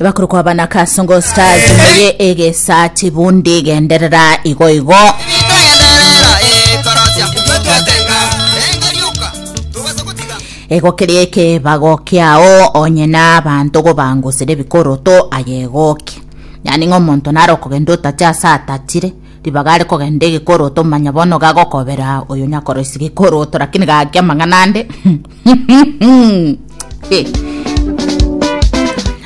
bakuru kwa bana kasongo stars meye egesati bundi genderera igo igo egokeria ekebago kiao onye na abanto gobangusire bikoroto ayegoki yani ng'a omonto naro okogenda otache ase atachire ribaga are kogenda egekoroto manya bono gagokobera oyo nyakoroisia gekoroto lakini gaki amang'ana ande Eh.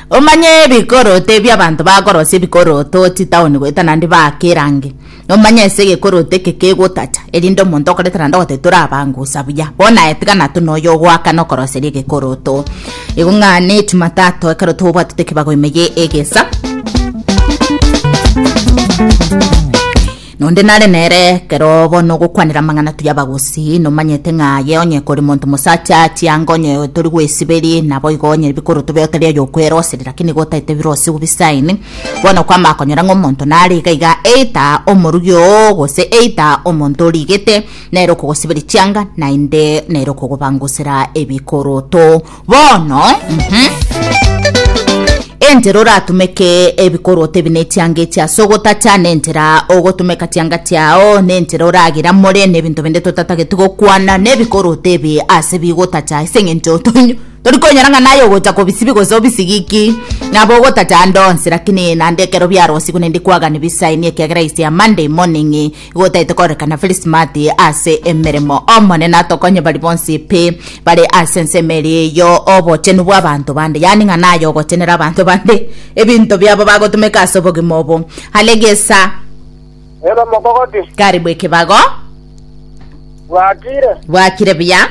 omanye ebikoroto ebi abanto bakorosia ebikoroto chitaoni goeta naende baake erangi omanye ase egekoroto eke kegotacha erinde omonto okoreta naende ogotetura abangusa buya bono aye tiga natwe na oyo ogoakana okoroseria egekoroto igo ng'a ne jumatatu ekero tobwatete ekebago ime ye egesa Nonde nare nere ekero bono ogokwanera amang'ana turi abagusii, nomanyete ng'a aye onye kore monto mosacha chianga onye tori gwesiberia, naboigo onye bikoro tobe otari oyokw'eroseri, lakini nigo otaete ebirosi obisaini. Bono kwama konyora ng'a omonto nare iga iga, eita omorugi oo, gose eita omonto origete, nere okogosiberia chianga, naende nere okogobangusera ebikoroto. Bono, entera oratumeke ebikorwa otebi nechianga echi ase ogotacha, nentera ogotumeka chianga chiao, nentera oragiramore nebinto binde totatageti gokwana, nebikorwa otebi ase bigotacha ase eng'encho tonyo torikonyora ng'a naye ogocha kobisibi gose obisigiki. Nabo ogotacha ande onsi, rakini naende ekero biarosigwe naende kwagani bisaini ekiagera is a Monday morning. Gotaete korekana Felismati ase emeremo. Omonene atokonye bari bonsi pi bare ase ensemo eria eyo obochenu bw'abanto bande, yaani ng'a naye ogochenera abanto bande ebinto biabo bagotumeka ase obogima obo. Hale gesa. Ere omokogoti. Karibu ekebago. Bwakire. Bwakire buya.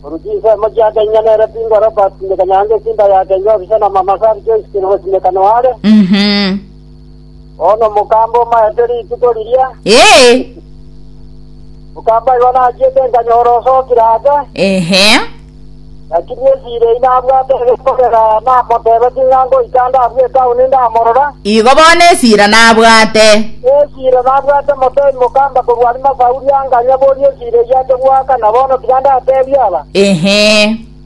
Korwa chinsemo chiake inya nere pingo Robert Simeka nyange esimba yake inya obisa na mama Sally Joyce Kenogo Simeka noare. Mhm. Bono omokamba omaete rituko riria, Ee, omokamba oyo nachiete nkanyora osokire ase, ehe, lakini esira eyi nabwate egekorera namotebetie ng'a ngoika ndabue etaoni ndamorora. igo bono esira nabwate. Esira nabwate motoi mokamba korwa Arimasauri anganya boria esira eyio ase goakana, bono tiga ndatebie aba. Ehe,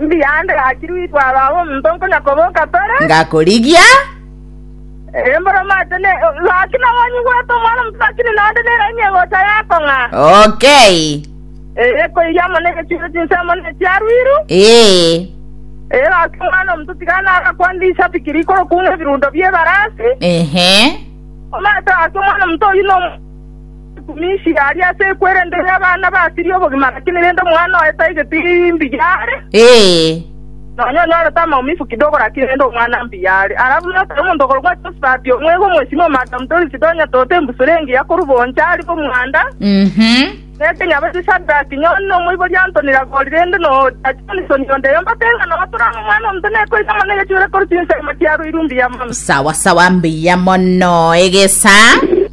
Mbuya ande gachirwe itwara abe omonto nkonya koboka tore. Ngakorigia. Embora omate ne gaki nabo onyigwete omwana omoto lakini naende neraini egocha yakong'a. Okay. Eye koiria amo negechiiro chinse amo nechiaruiru. Ee. Eye gaki omwana omoto tigana agakwande isabiki rikorokung'a ebirundo bi'ebarasi. Ehe. Omate gaki omwana omoto oyio no Emichi yaria ase ekwerendo y'abana basiria obogima, lakini rende omwana oye tai getimbi yare, Ee, nonya onyorete amaumivu kidogo, lakini rende omwana mbuya are. Alafu notoe omonto okorokwa Josafati, omwega omosimi o Madam Doris, tonya tote embusuro engiya korwa bonsi aria bw'omwanda, mhm. na ekenyabaisi Shadraki, Nyoni, na omoibori Antoni Ragori, rende na ogocha Johnson onde eyo, mbate ng'a nogotura ng'a omwana omonto nekoita mono egechuure korwa chinsemo chiaroirwe mbuya mono. Sawa sawa mbuya mono egesa.